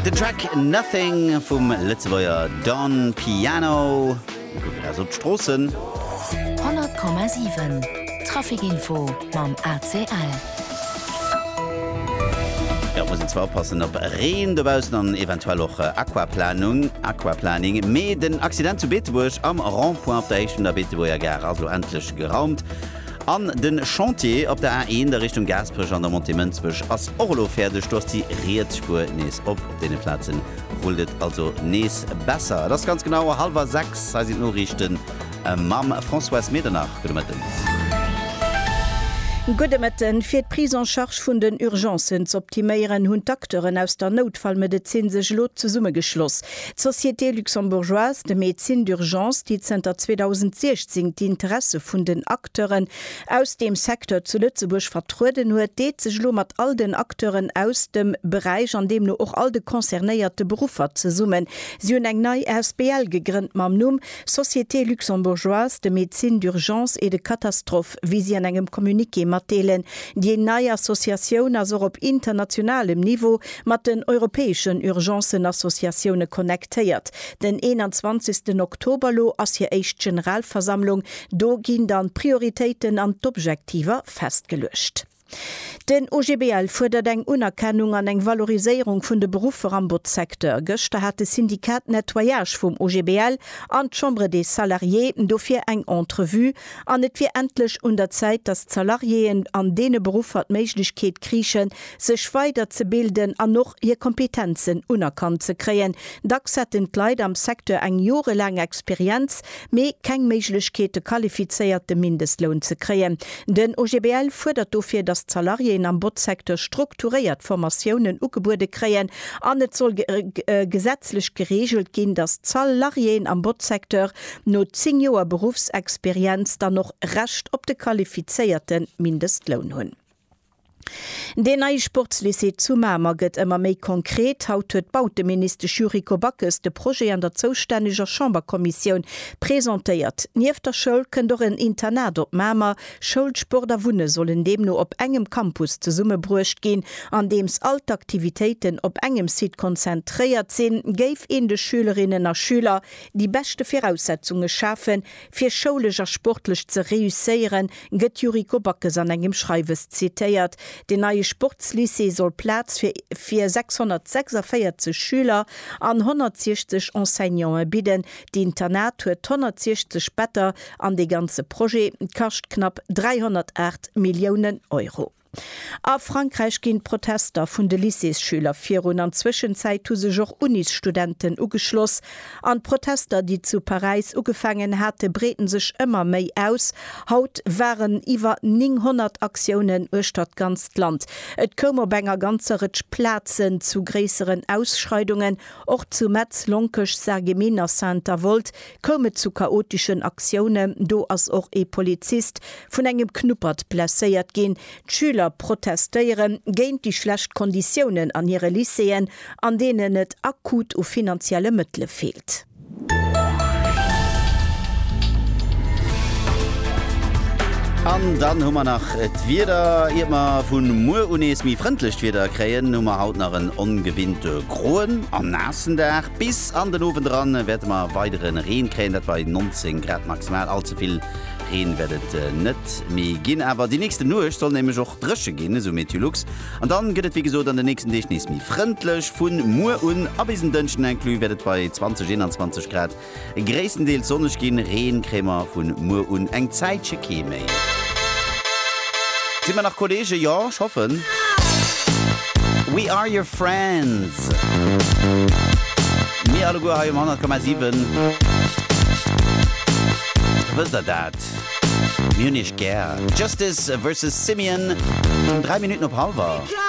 Den Track Nothing vum Lëtzebuerger Don Piano kuckt eis op d'Stroossen. 100,7 Traficinfo mam ACL. Jo, et muss een zwar oppassen op Reen dobaussen an eventuell och Aquaplanung, Aquaplaning. Mee den Accident zu Beetebuerg am Rond-point op der Héicht vun der Beetebuerger Gare ass elo endlech geraumt. An den Chantier op der A1 a Richtung Gaasperech an der Montée Mënsbech ass och elo fäerdeg. Do ass déi riets Spuer nees op. Op deene Plazen rullt et also nees besser. Et ass ganz genau hallwer 6. Hei sinn d'Noriichten mam Françoise Medernach. Gudde Mëtten. Gudde Mëtten. Fir d'Prise en charge vun den Urgencen z'optiméieren, hunn d'Acteuren aus der Noutfallmedezin sech elo zesummegeschloss. D'Société luxembourgeoise de médecine d'urgence, déi zënter 2016 d'Interesse vun den Acteuren aus deem Secteur zu Lëtzebuerg vertrueden huet, deet sech elo mat all den Acteuren aus dem Beräich an deemno och all de concernéierte Beruffer zesummen. Si hunn eng nei Asbl gegrënnt mam Numm Société luxembourgeoise de médecine d'urgence et de catastrophe. Prinzip, wéi si an engem Communiqué matdeelen. Déi nei Associatioun ass och op internationalem Niveau mat den europäeschen Urgencen-Associatioune connectéiert. Den 21 Oktober elo ass hir éischt Generalversammlung. Do ginn dann d'Prioritéiten an d'Objektiver festgeluecht. Den OGBL fuerdert eng Unerkennung an eng Valoriséierung vun de Beruffer am Botzsecteur. Gëschter hat de Syndicat Nettoyage vum OGBL an d'Chambre des Salariés dofir eng Entrevue an et wier endlech un der Zäit, datt d'Salariéen an deene Beruffer d'Méiglechkeet kriichen, sech weider ze bilden an och hir Kompetenzen unerkannt ze kréien. Dacks hätten d'Leit am Secteur eng jorelaang Experienz, mee keng Méiglechkeet de qualifizéierte Mindestloun ze kréien. Den OGBL fuerdert dofir, datt d'Salariéen am Botzsecteur strukturéiert Formatiounen ugebuede kréien an et soll gesetzlech gereegelt ginn, datt d'Salariéen am Botzsecteur no 10 Joer Beruffsexperienz dann och Recht op de qualifizéierte Mindestloun hunn. Deen neie Sportslycée zu Mamer gëtt ëmmer méi konkret. Haut huet d'Bauteministesch Yuriko Backes de Projet an der zoustänneger Chamberkommissioun presentéiert. Nieft der Schoul kënnt och en Internat op Mamer. Schoul, Sport a Wunne sollen deemno op engem Campus zesummebruecht ginn. Andeems all d'Aktivitéiten op engem Site konzentréiert sinn, géif een de Schülerinnen a Schüler déi beschte Viraussetzunge schafen, Fir schoulesch a sportlech ze reusséieren, gëtt d'Yuriko Backes an engem Schreiwes zitéiert. Den neie Sportslycée soll Plaz fir fir 646 Schüler an 160 Enseignanten bidden. D'Internat huet 160 Better an dee ganze Projet kascht knapp 308 Milliounen Euro. A Frankräich ginn d'Protester vun de Lycéesschüler virun. An Zwëschenzäit hu sech och Unisstudenten ugeschloss. An d'Protester, déi zu Paräis ugefaangen hate breeten sech ëmmer méi aus. Haut waren iwwer 900 Aktiounen uechter d'ganzt Land. Et koum op enger ganzer Rëtsch Plazen zu gréisseren Ausschreidungen. Och zu Metz, Lonkech, Sarreguemines a Saint-Avold koum et zu chaoteschen Aktiounen, do ass och ee Polizist vun engem Knuppert blesséiert ginn. D'Schüler protestéiere géint déi schlecht Konditiounen an hire Lycéeën, an deenen et akut u finanzielle Mëttele feelt. An dann hu mer nach d'Wieder. Iert mer vu muer u nees méi frëndlecht Wieder kréien, hu mer haut nach en ongewinnte groen a naassen Dag. Bis an den Owend eran wäerte mer weidere Reen kréien, dat bei 19 Grad maximal. All ze vill Reen wäert et net méi ginn, awer déi nächste Nuecht soll nämlech och dréche ginn, esou Meteolux. An dann gëtt et wéi gesot an den nächsten Deeg nees méi frëndlech. Vun muer un a bis en Dënschden inclus wäert et bei 20, 21 Grad Gréisstendeels sonneg ginn, Reen kréie mer vun muer un eng Zäitche kee méi. Sinn mer nach Kolleegen? Jo, ech hoffen. We are your friends. Mir alleguer hei um 100,7. Wësst der dat? Mir hunn iech gär. Justice versus Simian um 3 Minutten op halwer.